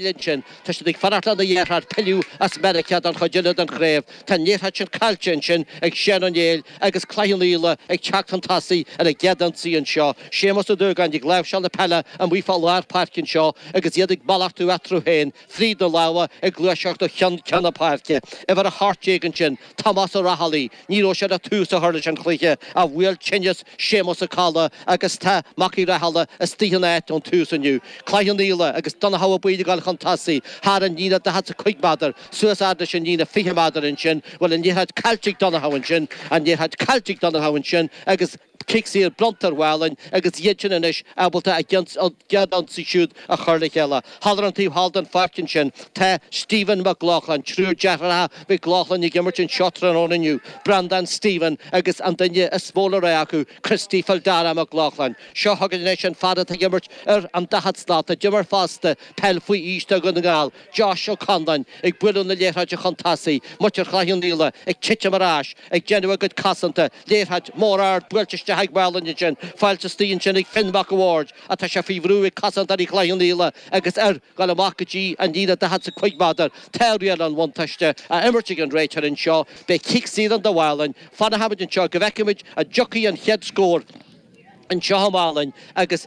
linn sin, tá siad ag fanacht lena dheartháir pilleadh as Meiriceá don chuid eile den chraobh, tá an liathróid sin caillte ansin ag Seán Ó Néill agus Cloich Cheann Fhaola ag teacht chun tosaigh ar a gcéad ionsaí anseo, Séamus Ó Dúgáin ag láimhseáil na peile amuigh fá lár páirce anseo agus iad ag malartú eatarthu féin fríd na lámha ag gluaiseacht ó cheann ceann na páirce, uimhir 18 ansin, Tomás Ó Raghallaigh. Ní raibh sé ag tús a chur leis an chluiche, ach bhuail tinneas Séamus Ó Colla agus tá Mac Uí Rathaille istigh ina áit ón tús inniu. Cloich Cheann Fhaola agus Donnchadha Ó Baoill ag gabháil chun tosaigh, thar an líne daichead 's a cúig méadar, suas fhad leis an líne fiche méadar, ansin bhfuil an liathróid caillte ag Donnchadha, ansin an liathróid caillte ag Donnchadha, ansin agus. Cic saor bronnta ar Mhálainn agus iadsan anois ábalta a gcéad ionsaí siúd a chur le chéile. Thall ar an taobh thall den pháirc ansin, tá Stephen Mac Lochlainn, triúr deartháireacha Mhic Lochlainn ag imirt anseo tráthnóna inniu, Breandán Stephen agus an duine is mó le rá acu, Christy Fildara Mac Lochlainn. Seo chugainn anois an fear atá ag imirt ar an daichead slat a d'imir fosta peil faoi aois do Dhún na nGall, Josh Ó Conláin ag bualadh na liathróide chun tosaigh, muintir Chloich Cheann Fhaola ag titim ar ais, ag déanamh a gcuid cosanta, liathróid mhór ard buailte isteach ag Málainn ansin, fáilte istigh ansin ag Finn Mhac a' Bhaird, ach tá sé faoi bhrú ag cosantóirí Chloich Cheann Fhaola, agus ar dhul amach go dtí an líne 40 's a cúig méadar, tá riail an bhuntáiste á imirt ag an réiteoir anseo, beidh cic saor ann do Mhálainn fanachaimid anseo go bhfeicfimid an dtiocfaidh an chéad scór anseo ag Málainn agus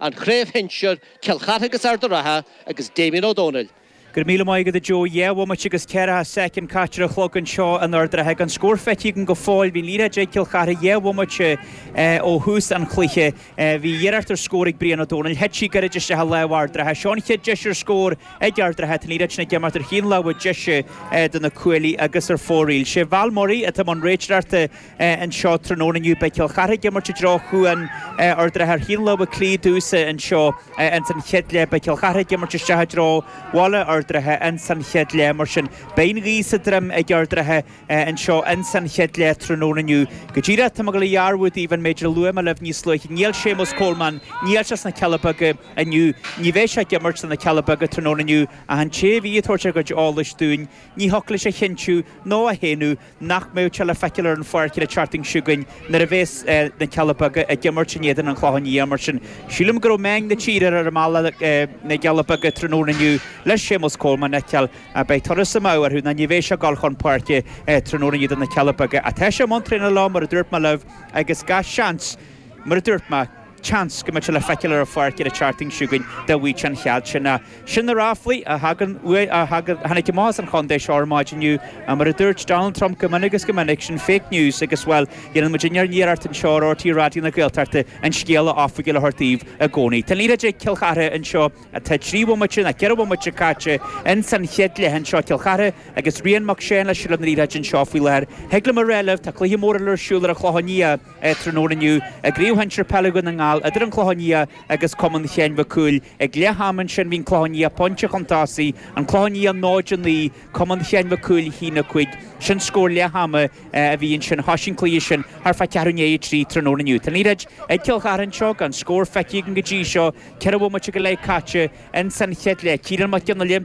An Chraobh Shinsir, Cill Chartha agus Ard a' Ratha agus Damien Ó Dónaill. Go raibh míle maith agat a Joe, dhá bhomaite agus ceithre soicind caite ar an chlog anseo in Ard a' Ratha. Gan scór feicthe againn go fóill, bhí an liathróid ag Cill Chartha dhá bhomaite ó thús an chluiche. Bhí iarracht ar scór ag Brian Ó Dónaill, thit sí gairid isteach i lámh Ard a' Ratha. Seo an chéad deis ar scór ag Ard a' Ratha, tá an liathróid sin ag imeacht ar thaobh na láimhe deise do na cuaillí agus ar fóraoil. Sé Val Murray atá i mbun réiteoireachta. anseo tráthnóna inniu. Beidh Cill Chartha ag imirt i dtreo chúl Ard a' Ratha ar thaobh na láimhe clé domhsa anseo ins an chéad leath. Beidh Cill Chartha ag imirt isteach i dtreo Bhaile Ard a' Ratha ins an chéad leath mar sin. Beidh an ghaoth sa droim ag Ard a' Ratha anseo ins an chéad leath tráthnóna inniu. Go díreach, tá mé ag dul a dhearbhú daoibh an méid a luaigh mé libh níos luaithe. Níl Séamus Coleman, níl sé sna Cealla Beaga inniu. Ní bheidh sé ag imirt do na Cealla Beaga tráthnóna inniu ach an té a bhí ag tabhairt a gcuid eolais dúinn, ní thiocfadh leis a chinntiú nó a shéanadh, nach mbeidh sé le feiceáil ar an pháirc an tseachtain seo chugainn nuair a bheas na Cealla Beaga ag imirt in éadan an Chlocháin Léith, mar sin sílim go raibh meáin na tíre ar a mbealach chun na gCealla Beaga tráthnóna inniu le Séamus Coleman a fheiceáil. Beidh turas amú orthu nó ní bheidh sé ag dul chun páirce tráthnóna inniu do na Cealla Beaga ach tá sé i mbun traenála mar a dúirt mé libh agus gach seans, mar a dúirt mé, Seans go mbeidh sé le feiceáil ar an pháirc ar an tseachtain seo chugainn dá bhfaigheadh an chead sin. Ach sin na ráflaí a thagann uaidh, a thagann. Tháinig amach as an chontae seo ar maidin inniu, mar a dúirt Donald Trump go minic is go minic, sin fake news agus, bhuel, déanann muidinne ár n-iarracht anseo ar RTÉ Raidió na Gaeltachta an scéala oifigiúil a thabhairt daoibh i gcónaí. Tá an liathróid ag Cill Chartha anseo, tá trí bhomaite nó ceithre bhomaite caite ins an chéad leath anseo, Cill Chartha agus Rian Mac Seáin le seilbh na liathróide anseo faoi láthair. Thig liom a rá libh, tá cluiche mór eile ar siúl ar an Chlochán Liath, tráthnóna inniu i gCraobh Shinsir Peile Dhún na nGall idir an Clochán Liath agus Cumann Sheáin Mhic Cumhaill. Ag leath ama ansin bhí an Clochán Liath pointe chun tosaigh, An Clochán Liath 0-9, Cumann Sheáin Mhic Cumhaill 1-5. Sin scór leath ama a bhí ansin. Thosaigh an cluiche sin thart fá cheathrú i ndiaidh a trí tráthnóna inniu. Tá an liathróid ag Cill Chartha anseo gan scór feicthe againn go dtí seo, ceithre bhomaite go leith caite ins an chéad leath. Ciarán Mac Fhionnghaile.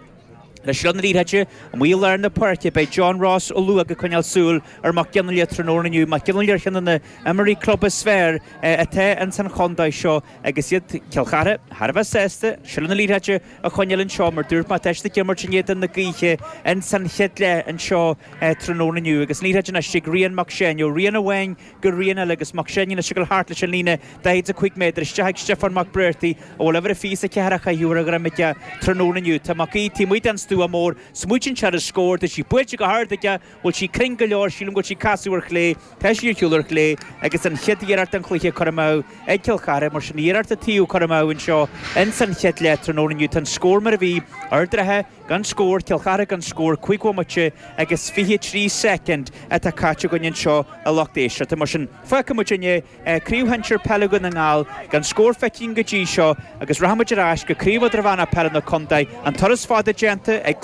Le seilbh na liathróide amuigh i lár na páirce, beidh John Ross Ó Luaigh ag coinneáil súil ar Mac Fhionnghaile tráthnóna inniu. Mac Fhionnghaile ar cheann de na h-imreoirí club is fearr atá ins an chontae seo agus iad, Cill Chartha, thar a bheith sásta seilbh na liathróide a choinneáil anseo mar dúirt mé, tá siad ag imirt in éadan na gaoithe ins an chéad leath anseo tráthnóna inniu agus an liathróid anois ag Rian Mac Seáin, ó Rian amháin go Rian eile agus Mac Seáin ag siúl thart leis an líne 45 méadar isteach ag Stiofán Mac Briartaigh a bhfuil uimhir a fiche is a ceathair á chaitheamh ar a dhroim aige tráthnóna inniu. Tá Mac Aoidh taobh amuigh den stua mór, smaoitíonn sé ar an scór, tá sí buailte go hard aige, bhfuil sí cruinn go leor, sílim go bhfuil sí ag casadh ar chlé, tá sí ar shiúl ar chlé agus an chéad iarracht den chluiche curtha amú ag Cill Chartha, mar sin iarracht an taobh curtha amú anseo ins an chéad leath tráthnóna inniu, tá an scór mar a bhí, Ard an Rátha. Gan scór, Cill Chartha gan scór, cúig bhomaite agus fiche trí soicind atá caite againn anseo a lucht éisteachta mar sin. Fágfaidh muidinne Craobh Shinsir Peile Dhún na nGall gan scór feicthe againn go dtí seo agus rachaidh muid ar ais go Craobh Idirmheánach Peile na Contae, an turas fada déanta ag